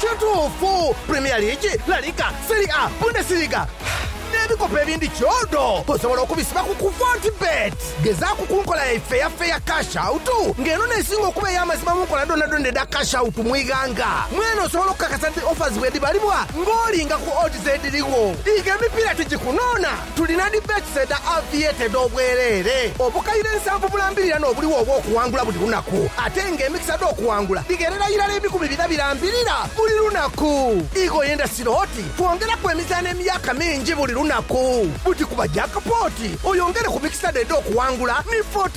Kituufu, Premier League, La Liga, Serie A, Bundesliga, n'ebikopo ebindi kyodo osobola okubisiba ku ku Fortebet. Gezaaku ku nkola yaife eya Fair Cash Out nga eno n'esinga okuba ey'amazima mu nkola dhoonadhoona edha Cash Out mu ighanga. Mwene osobola okukakasa nti offers bwedhibalibwa ng'olinga ku odds edhirigho. Dhiika emipiira tigikunoona! Tulina dibetes edha aviator edh'obwereere obukaire nsanvu bulambirira n'obuligho obw'okuwangula buli lunaku, ate nga emikisa dh'okuwangula dhigherera irala ebikumi bina birambirira buli lunaku. Igo ye ndasiro oti twongeraku emizaano emyaka mingi buli lunaku. Buti kuba jackpot oyongere ku mikisa dho edh'okuwangula ni Fort.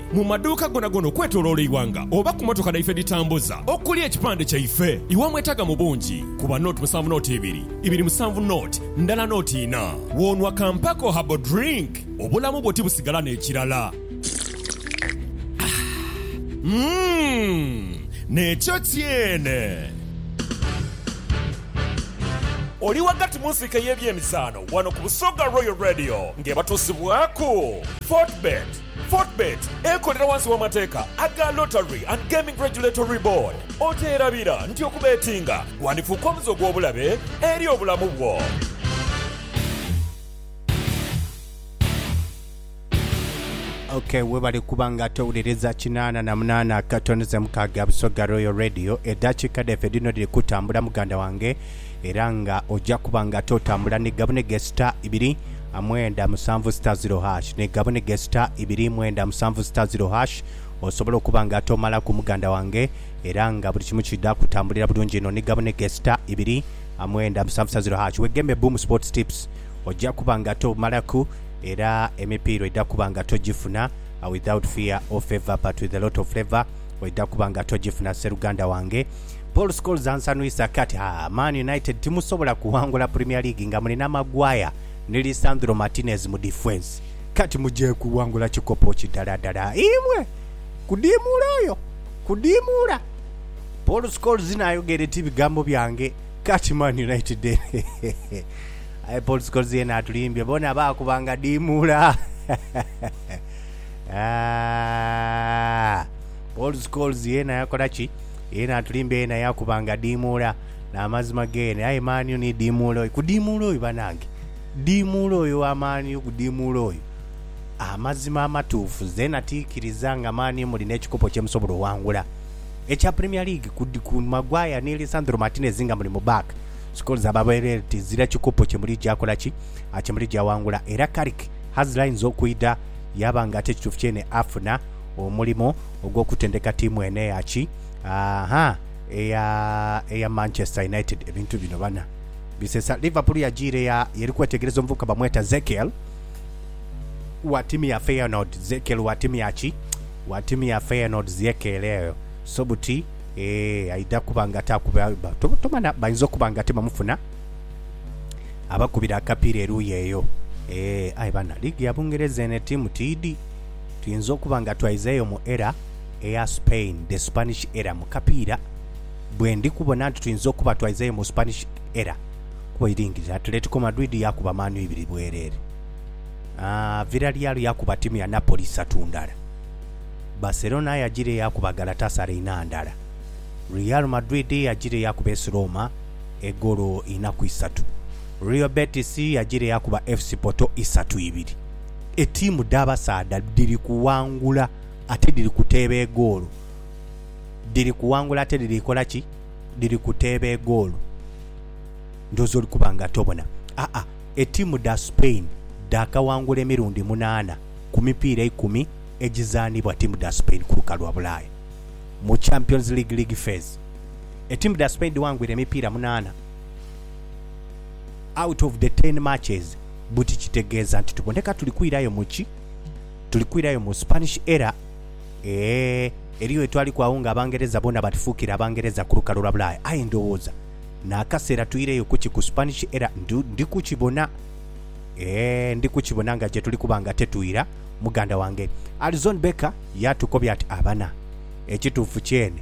Mu maduuka gonagona okwetoloola eighanga oba ku mmotoka dhaife edhitambuza okuli ekipande kyaife, iwamwetaaga mu bungi kuba note musanvu note ibiri, ibiri musanvu note ndala note ina. W'onwa ka Mpeko Herbal Drink, obulamu bwo tibusigala n'ekirala. Umm! N'ekyo kyene! Oli ghagati mu nsiike ey'ebyemizaano wano ku Busoga Royal Radio ng'ebatuusibwaku Fortebet. Fortebet ekolera wansi w'amateeka aga Lottery and Gaming Regulatory Board. Okyerabira nti okubetinga gwandifuuka omuze ogw'obulabe eri obulamu bwo? Ok webale kuba nga towuliriza kinaana na munaana katoneze mukaaga Busoga Royal Radio. Edaakiika dhaife dhino dhiri kutambula muganda wange. era nga oja kuba nga totambula ni gabune ge sita ibiri mwenda musanvu sita ziro hash ni gabune ge sita ibiri mwenda musanvu sita ziro hash osobola okuba nga tomalaku muganda wange era nga buli kimu kidha kutambulira bulungi inho ni gabune ge sita ibiri mwenda musanvu sita ziro hash wegembe Boom Sports Tips oja kuba nga tomalaku era emipiira oidha kuba nga togifuna without fear or favour but with a lot of flavour oidha kuba nga togifuna sseruganda wange. Paul Scholes ansanhwisa ake ati, Ha, Man United timusobola kuwangula Premier League nga mulina Maguire ni Lisandro Martinez mu difensi. Kati muje kuwangula kikopo ki daladala imwe? Kudiimuula oyo! Kudiimuula! Paul Scholes n'ayogera eti, Ebigambo byange kati Man United eno. Aye Paul Scholes yeena atulimbye, boona baakuba nga diimuula. Ah! Paul's Coles yeena yakola ki? Yeena atulimbya, yeena yaakuba nga diimuula. N'amazima geene. Aye mani u ni diimuula oyo. Ku diimuula oyo banange. Diimuula oyo wa mani u, ku diimuula oyo. Amazima amatuufu. Nze natikiriza nga mani u muli n'ekikopo kye musobola oghangula ekya Premier League ku, ku Maguire ni Lisandro Martinez nga muli mu back. Scholes aba bwereere tizira kikopo kye muligya kola ki? Kye muligya ghangula. Era Carrick has lines okwidha yaaba nga ate kituufu kyeene afuna. Omulimo ogw'okutendeka tiimu eno eya ki? Aa-ha, eya, eya Manchester United. Ebintu bino bana bisesa. Liverpool yajiire ya, yeri kwetegereza omuvubuka bamweta Zekiel, wa tiimu ya Feyenoord. Zekiel wa tiimu ya ki? Wa tiimu ya Feyenoord, Ziekiel eyo. So buti, ee, aidha kuba nga ate akuba, ba, to, tomanha, bainza okuba nga ate bamufuna abakubira akapiira eruuyi eyo. Ee, aye bana, liigi ya Bungereza eno etiimu tiidhi. Tuyinza okuba nga twaizeeyo mu era eya Spain, the Spanish era, mu kapiira. Bwe ndi kubona nti tuyinza okuba twaizeeyo mu Spanish era kuba eiringirire Atletico Madrid yaakuba Man U ibiri bwereere, aa, Villarreal yaakuba ttiimu ya Napoli isatu ndala, Barcelona yagiire yaakuba Galatasaray inha ndala, Real Madrid yagiire yaakuba AS Roma egoolo inha ku isatu, Real Betis yagiire yaakuba FC Porto isatu ibiri. etiimu dh'abasaadha dhiri kuwangula ate dhiri kuteeba egoolo. Dhiri kuwangula ate dhiri kola ki? Dhiri kuteeba egoolo. Ndhooza oli kuba nga tobona. Aa, etiimu dha Spain dhaakawangula emirundi munaana ku mipiira eikumi egizaanibwa ttiimu dha Spain ku lukalu lwa Bulaaya. Mu Champions League league phase, etiimu dha Spain dhiwangwire emipiira munaana. Out of the ten matches buti kitegeeza nti tuboneka tuli kwirayo mu ki? Tuli kwirayo mu Spanish Era eeh eriyo we twaliku agho nga Abangereza boona batufuukire Abangereza ku lukalu lwa Bulaaya. Aye ndowooza n'akaseera tuireyo ku ki? Ku Spanish Era ndi, ndi kukibona, eeh ndi kukibona nga gye tuli kuba nga tetwira. Muganda wange Alison Becker yaatukobya ati, Abana, ekituufu kyene.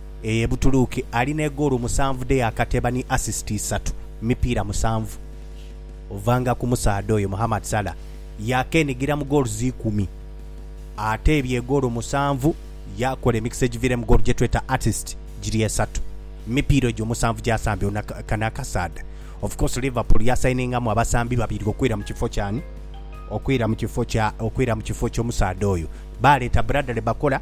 Eye Butuluuki ali ne goolo musanvu dhe yaakateba ni asisiti isatu mu mipiira musanvu. Ovanga ku musaadha oyo, Mohammad Salah yaakenigira mu goals ikumi. Ateebye goolo musanvu, yaakola emikisa egiviiremu goolo gye tweta assist giri esatu mu mipiira egyo omusanvu gy'asambye. Ono kano akasaadha, of course Liverpool yasayiningamu abasambi babiri okwira mu kifo ky'ani? Okwira mu kifo kya, okwira mu kifo ky'omusaadha oyo. Baaleeta Bradley Bakola.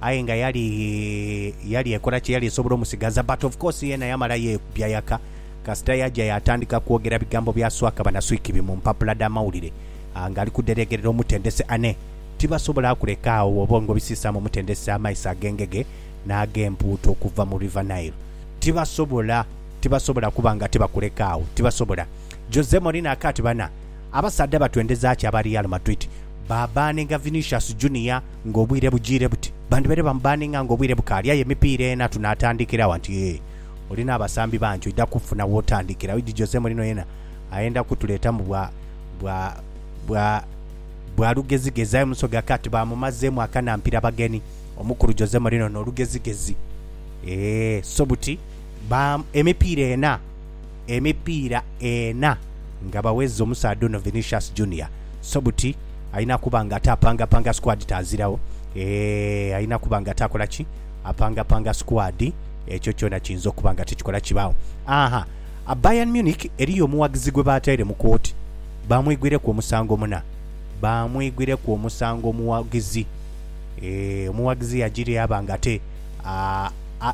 Aye nga yali yali ekola kyeyali esobola omusigaza but of course yena yamala yekubya yaka kasita yaja yatandika kwogera bigambo bya swaka banaswikibi mu mpapula dha mawulire nga ali kudheregerera omutendesi Ane tibasobola kuleka agho bwobonga obisisamu omutendesi amaiso agengege nagempuuta okuva mu River Nile tibasobola tibasobola kuba nga tibakuleka agho tibasobola Jose Mourinho akati bana Abasaadha batwendeza ki aba Real Madrid? Baabbaninga Vinicius Junior ng'obwire bujiire buti? Bandibaire bamubbaninga ng'obwire bukaali aye emipiira ena tunaatandikira wa nti, Ee, olina abasambi bangi oidha kufuna w'otandikira. Oidhi Jose Mourinho yena ayenda kutuleetamu bwa, bwa, bwa, bwa lugezigezi aye Musoga Cat baamumazeemu akanampira bageni. Omukulu Jose Mourinho n'olugezigezi. Ee, so buti? Ba, emipiira ena. emipiira ena nga bawezza omusaadha ono Vinicius Junior so buti alina kuba nga ate apangapanga squad tazirawo eeh alina kuba nga ate akola ki apangapanga squad ekyo kyona kiyinza okuba nga tekikola kibaawo aha a Bayern Munich eriyo omuwagizi gwe bataire mu kooti bamwigwireku omusango muna bamwigwireku omusango omuwagizi eeh omuwagizi yagiri aba nga ate a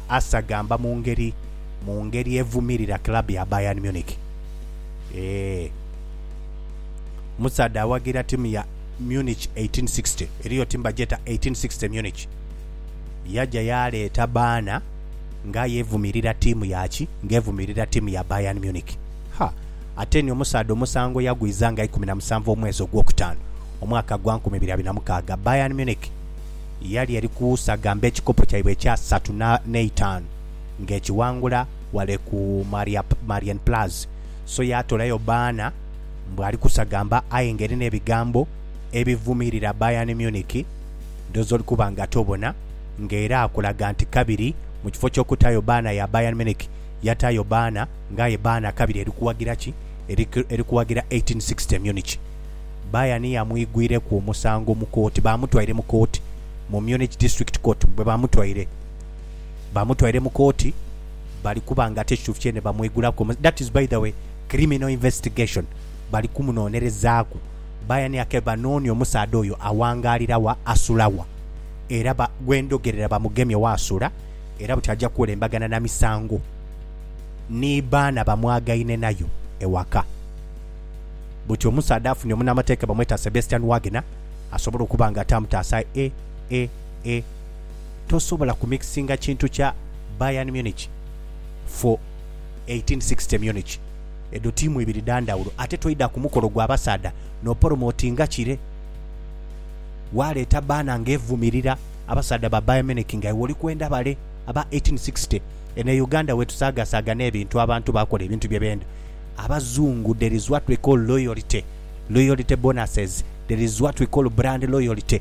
asagamba mu ngeri mu ngeri evumirira club ya Bayern Munich. Eeh. Omusaadha awagira tiimu ya Munich 1860, eriyo tiimu bagyeta 1860 Munich. Yaja yaleeta baana nga aye evumirira tiimu ya ki? Nga evumirira tiimu ya Bayern Munich. Ha! Ate ni omusaadha omusango yagwiza nga ikumi na musanvu omwezi ogwokutaanu, omwaka gwa nkumi ibiri abiri na mukaaga. Bayern Munich yali eri kusaga mbe ekikopo kyaibwe ekyasatu n'eitaanu. ng'ekiwangula wale ku Marienplatz, so yaatolayo baana mbu ali kusagamba aye ng'eri n'ebigambo ebivumirira Bayern Munich ndhoozi oli kuba nga tobona ng'era akulaga nti kabiri mu kifo ky'okutaayo baana ya Bayern Munich yataayo baana ng'aye baana kabiri eri kuwagira ki? Eri kuwagira 1860 Munich. Bayern yamwigwireku omusango mu kooti, baamutwaire mu kooti mu Munich District Court bwe baamutwaire. bamutwaire mukooti bali kuba nga ate ekituufu kyene bamwegulaku omusango that is by the way criminal investigation bali kumunonerezaaku bayaniyake banoonye omusaadha oyo awangaalira wa asula wa era ba gwendhogerera bamugemye wa asula era buti aja kuwelembagana na misango ni baana bamwagaine nayo ewaka buti omusaadha afunye omunamateeka bamweta Sebastian Wagner asobole okuba nga ate amutaasa e e e tosobola ku mixinga kintu kya Bayern Munich for eighteen sixty Munich edho tiimu ibiri dha ndhawulo ate toidha ku mukolo gwa basaadha n'opolomotinga kire waaleeta baana nga evumirira abasaadha ba Bayern Munich nga iwe oli kwenda bale aba eighteen sixty Eno e Uganda wetusaagasaaga n'ebintu abantu baakola ebintu bye benda Abazungu there is what we call loyalty loyalty bonuses there is what we call brand loyalty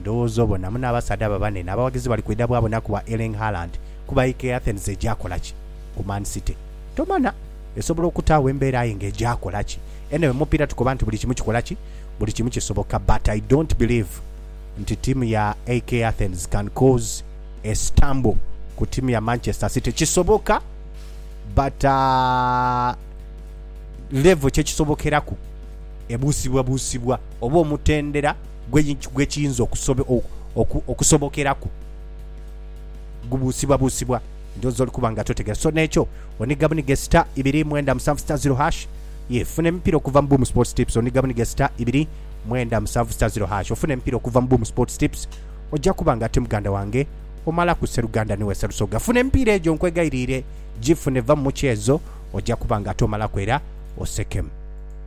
Ndowooza obona muno abasaadha abo abanene abawagizi bali kwidha bwabona ku bwa Erling Haaland kuba aye ke Athens eja kola ki ku Man City? Tomana. Esobola okuta agho embeera aye nga eja kola ki? Anyway, mu mupiira tukoba nti buli kimu kikola ki? Buli kimu kisoboka but I don't believe nti ttiimu ya AEK Athens can cause a stumble ku ttiimu ya Manchester City. Kisoboka but level kye kisobokeraku ebuusibwabuusibwa oba omutendera. gwe kiyinza okusobokeraku, gubuusibwabuusibwa ndhoozi oli kuba nga totegeera. So n'ekyo oniga buniga star ibiri mwenda musanvu star zero hash, yee funa emipiira okuva mu Boom Sports Tips. Oniga buniga star ibiri mwenda musanvu star zero hash ofune emipiira okuva mu Boom Sports Tips. Oja kuba nga ate muganda wange omalaku sseruganda ni wesa lusoga. Funa emipiira egyo nkwegairiire gifune, va mu mukyeezo oja kuba nga ate omalaku era osekemu.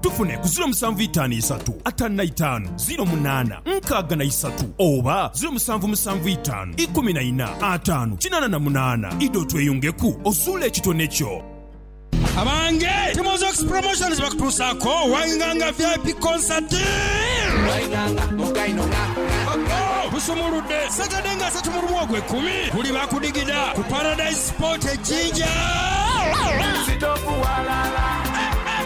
Tufune ku ziro musanvu itaanu isatu ataanu na itaanu ziro munaana nkaaga na isatu oba ziro musanvu musanvu itaanu ikumi na ina ataanu kinaana na munaana. Idha otweyungeku ozuule ekitone kyo. Abange! Timozox Promotions bakutuusaako Wainganga vip Concert. Busumuludde Saturday nga asatu mu lumu ogwe kumi guli bakudigida ku Paradise Sport e Jinja.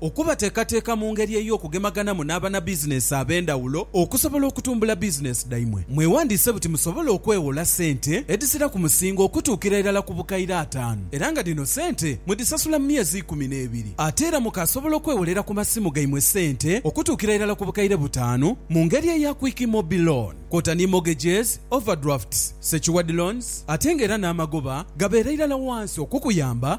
Okubateekateeka mu ngeri ey'okugemaganamu n'abanabizineesi ab'endhawulo okusobola okutumbula bizineesi dhaimwe. Mwewandiise buti musobole okwewola sente edhisira ku musingo okutuukira irala ku bukaire ataanu era nga dhino sente mudhisasula mu myezi ikumi n'ebiri. Ate era mukaasobola okwewolera ku masimu gaimwe sente okutuukira irala ku bukaire butaanu mu ngeri eya Quick Mobi Loan kwota ni mortgages, overdrafts, secured loans ate nga era n'amagoba gabeera irala wansi okukuyamba